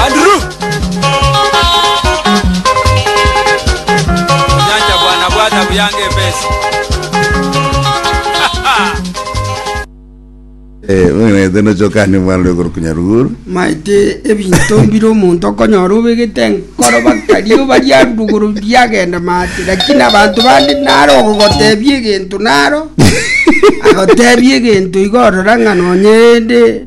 Andrew. Onyancha bwana bwata buyange ebesi. Eh, mweng'enete nochokanie mwana oyo korwa Nyaruguru. maete ebinto mbire omonto okonyora obegete enkoro bakaria obaria nduguru biagenda maate lakini abanto bande naro ogogotebia egento naro agotebia egento iga orora ng'a nonye ende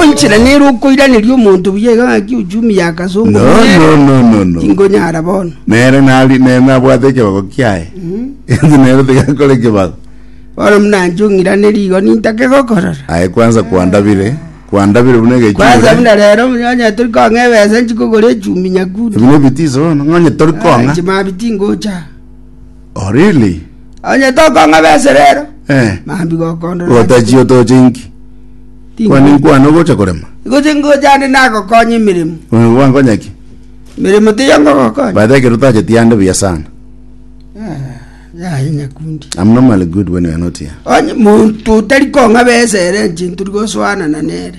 Onchera nere okoiraneria omonto buya iga ng'aki uchumi ya kasongo. No, no, no, no, no. Tingonyara bono. Nere nari nere nabwate ekebago kiaye. Inche nere tigakore ekebago. Bono muna nchung'iraneria igo nintake gokorora. Aye kwanza kwandabire. Kwandabire buna Kwanza egechura. muna rero onye tori kong'a ebesa nchikogora echumbi nyakundi. Ebino ebitiso bono. Ng'onye tori kong'a. Chimabiti ngocha. Oh, really? Onye tokong'aba ase rero, Eh. mambi gokondora. Gotachi otoche inki? Kwani nkwane ogocha korema? Goche ngocha ande nagokonye emeremo. Oyo gwankonya ki? Emeremo tiyo ngogokonye. By the way, ekero otacheti ande buya sana. Yaye nyakundi. I'm normally good when you're not here. Onye muntu otari kong'aba ese ere nche nturi gosoanana nere.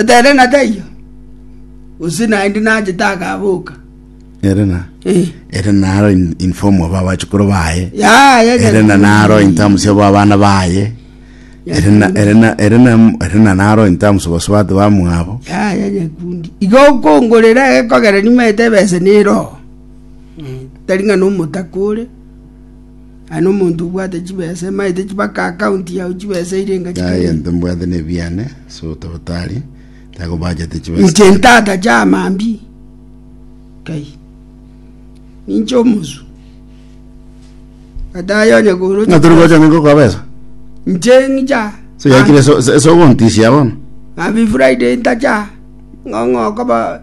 Etere na taiyo. Usi naende nache takaboka. ere na Eh. ere naro in, in form of abachukuru baye Ya ya. ere na naro in terms of abana baye ere na ere na ere na ere na naro in terms of basubati bamwabo Ya ya nyakundi. Igo okongorera ekogera nimaete bese nero. Tari ng'a nomotakore. Aye nomonto obwate chibesa emaete chibake akaunti yao chibesa ere enga Inche aye chikarenge. ntombwate nebiane, ase otabotari tagobachete chibesa. Inche ntata chiamambia kai ninche omosu gataye onye kooroche Ng'a tori gocha ningo kwa besa. inche ng'icha So yakire so so- so gontisia bono. Mambi Friday ntacha ng'ong'o okoba